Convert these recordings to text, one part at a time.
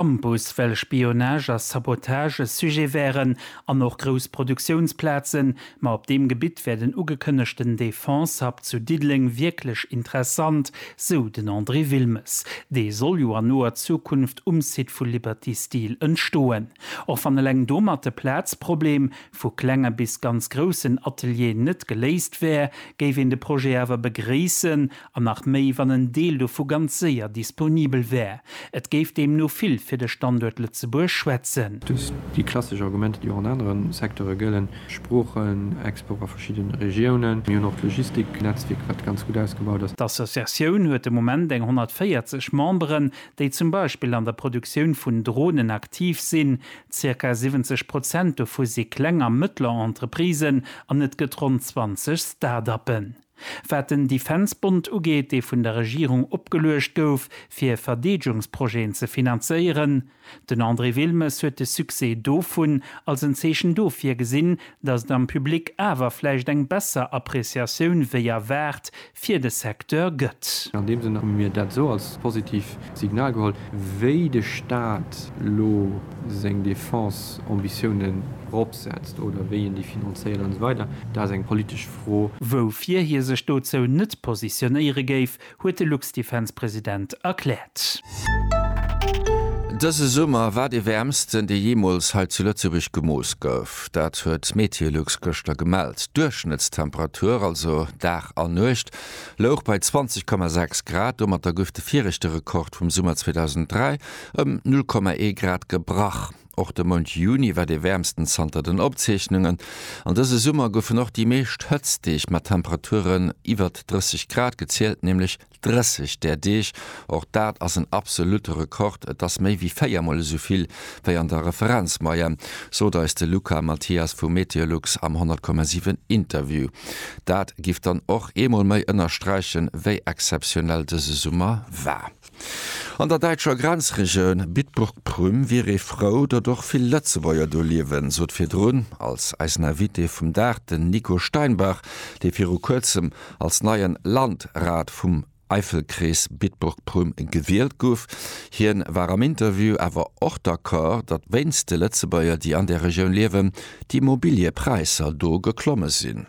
am Bus, well Spionage a Sabotage e Sujet wären an och grouss Produktiounsplazen. Ma op deem Gebitt wär den ugekënnegten Defense-Hub zu Diddeleng wierklech interessant, sou den André Wilmes. Dee soll jo an noer Zukunft um Site vu Liberty Steel entstoen. Och wann eleng domat de Plazproblem vu klenge bis ganz groussen Atelieren net geléist wär, géif een de Projet awer begréissen, An nach méi, wann en Deel dovu ganz séier disponibel wär. Et géif deemno vill fir de Standuert Lëtzebuerg schwätzen. Dës, déi klassesch Argumenter, déi och an anere Secteure gëllen, Sproochen, Export a verschidde Regiounen. Mir hunn och d'Logistiknetzwierk, wat ganz gutt ausgebaut ass. D'Associatioun huet de Moment eng 140 Memberen, déi zum Beispill an der Produktioun vun Dronen aktiv sinn. Zirka 70 Prozent dovu si kleng a mëttler Entreprisen an et gëtt ronn 20 Start-uppen. Wat den Defense-Bond ugeet, dee vun der Regierung opgeluecht gouf, fir Verdeedgungsprojeten ze finanzéieren, den André Wilmes huet de Succès dovun als en Zeechen dofir gesinn, datt et am Public awer vläicht eng besser Appreciatioun wéi erwaart fir de Secteur gëtt. An deem Sënn hu mir dat esou als positiv Signal geholl. Wéi de Staat elo seng Defense-Ambitiounen eropsetzt oder wéi en déi finanzéiert an esou weider, dat ass eng politesch. Fro, woufir hie sech dozou net positionéiere géif, huet de Luxdefense-President erkläert. Dëse Summer war dee wäermsten, dee jeemools hei zu Lëtzebuerg gemooss gouf. Dat huet Meteolux gëschter gemellt. D'Duerchschnëttstemperatur, also Dag a Nuecht, louch bei 20,6 Grad. Domatter gouf de viregte Rekord vum Summer 2003 ëm 0,1 Grad gebrach. Och de Mount Juni war dee wäermsten zanter den Opzeechnungen an dëse Summer goufen och déi meescht Hëtztdeeg mat Temperaturen iwwert 30 Grad gezielt, nämlech 30 där Deeg. Och dat ass en absolutte Rekord, et ass méi wéi véier Mol esou vill wéi an der Referenzmoyenne, sot eis de Luca Mathias vu Meteolux am 100,7 Interview. Dat giff dann och eemol méi ënnersträichen, wéi exzeptionell dëse Summer war. An der däitscher Grenzregioun Bitburg-Prüm wier ee frou, datt och vill Lëtzebuerger do liewen, sot virdrun als eisen Invité vum Dag den Nico Steinbach, dee viru kuerzem als neien Landrat vum Eifelkrees Bitburg-Prüm gewielt guff. Hien war am Interview awer och d'Accord, datt wéinst de Lëtzebuerger, déi an der Regioun liewen, d'Immobiliëpräisser do geklomme sinn.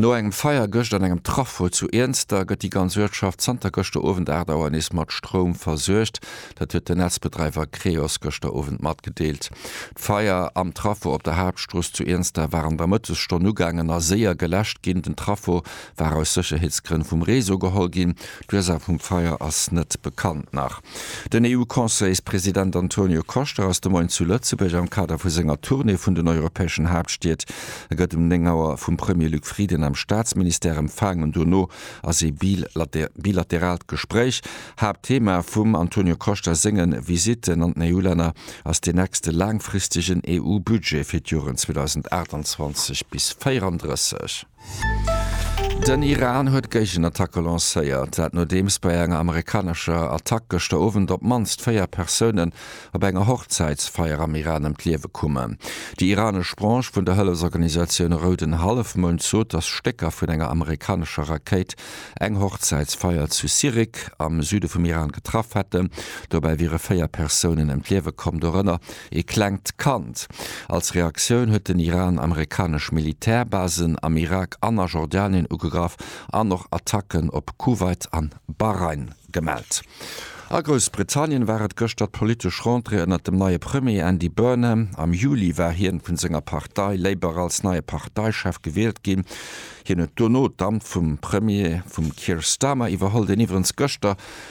No engem Feier gëscht an engem Traffo zu Iernster gëtt déi ganz Uertschaft zanter gëschter Owend 8 Auer nees mat Stroum versuergt. Dat huet den Netzbedreiwer Creos gëschter Owend matgedeelt. D'Feier am Traffo op der Haaptstrooss zu Iernster war an der Mëttesstonn ugaangen a séier geläscht ginn. Den Traffo war aus Sécherheetsgrënn vum Réseau geholl ginn. D'Ursaach vum Feier ass net bekannt nach. Den EU-Conseilspresident Antonio Costa ass de Moien zu Lëtzebuerg am Kader vu senger Tournée vun den europäeschen Haaptstied. E gëtt um 9 Auer vum Premier Luc Frieden am Staatsministère empfaang an dono ass ee bilateraalt Gespréich. Haaptthema vum Antonio Costa senge Visitten an den EU-Länner ass deen nächste laangfristegen EU-Budget fir d'Joren 2028 bis 34. Den Iran huet Géigenattacke lancéiert, dat nodeems bei enger amerikanescher Attack gëschter Owend op d'mannst véier Persounen op enger Hochzäitsfeier am Iran ëm d'Liewe kommen. Déi iranesch Branche vun der Hëllefsorganisatioun Rouden Hallefmound sot, datt Stécker vun enger amerikanescher Rakéit eng Hochzäitsfeier zu Sirik am Süde vum Iran getraff hätten. Dobäi wiere véier Persounen ëm d'Liewe komm, dorënner Ee klengt Kand. Als Reaktioun huet den Iran amerikanesch Militärbasen am Irak an a Jordanien ugegraff an och Attacken op Kuwait an Bahrain gemellt. A Groussbritannien war et gëschter d'politesch Rentrée ënnert dem neie Premier Andy Burnham. Am Juli war hien vun senger Partei Labour als neie Parteichef gewielt ginn. Hien huet dono d'Amt vum Premier vum Keir Starmer iwwerholl, deen iwwerens gëschter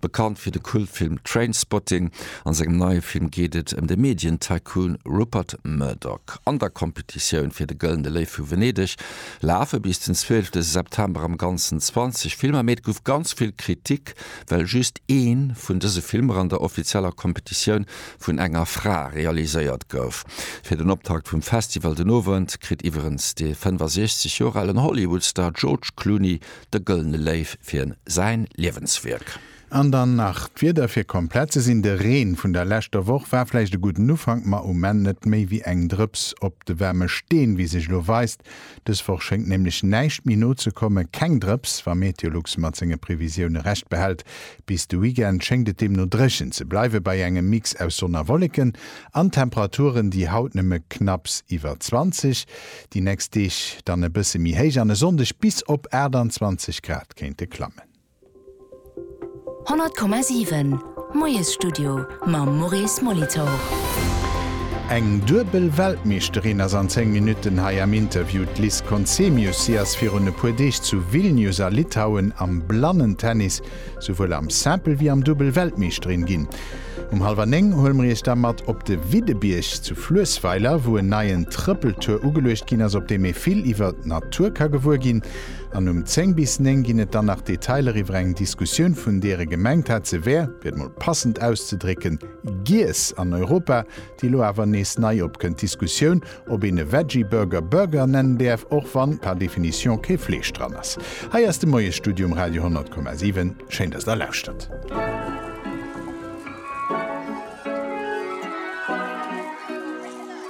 Bekannt fir de Kultfilm Trainspotting, a sengem neie Film geet et ëm de Medien-Tycoon Rupert Murdoch. An der Competitioun fir de Gëllene Léiw vu Venedeg lafe bis den 12 September am Ganzen 20 Filmer, mee et gouf ganz vill Kritik, well just ee vun dëse Filmer an der offizieller Competitioun vun enger Fra realiséiert gouf. Fir den Optakt vum Festival den Owend kritt iwwerens de 65 Joer alen Hollywood-Star George Clooney De Gëllene Léiw fir säin Liewenswierk. An dann nach d'Wieder fir komplett ze sinn, De Reen vun der leschter Woch war vläicht e gudden Ufank, ma um Enn net méi wéi eng Drëps op de waarme Steen, wéi sech elo weist. Dës Woch schéngt nämlech näischt méi no ze kommen, keng Drëps, wa Meteolux mat senge Previsioune Recht behält. Bis de Weekend schéngt et deemno dréchen ze bleiwe bei engem Mix aus Sonn a Wolleken an Temperaturen, déi haut nëmme knapps iwwer 20 Déi nächst Deeg dann e bësse méi héich an e Sonndeg bis op 28 Grad kéinte klammen. 100,7 Moiesstudio mam Maurice Molitor. Eng duebel Weltmeeschterin ass an 10 Minutten hei am Interview, d'Liz Conzemius. Si ass virun e puer Deeg zu Vilnius a Litauen am Blannentennis souwuel am Simple wéi am Dubbel Weltmeeschterin ginn. Um hallwer 9 huele mer Iech da mat op de Widdebierg zu Fluessweiler, wou en neien Trëppeltour ugeluecht ginn ass, op deem ee vill iwwer d'Natur ka gewuer ginn. An um 10 bis 9 ginn et dann nach Detailer iwwer eng Diskussioun, vun deer e gemengt hat, se wär, fir et mol passend auszedrécken, Giess an Europa, déi elo awer nees nei opkënnt, d'Diskussioun, ob een e Veggie Burger Burger nennen däerf, och wann par définition kee Fleesch dran ass. Hei ass de Moiesstudio um Radio 100,7. Schéin, dass Der lauschtert.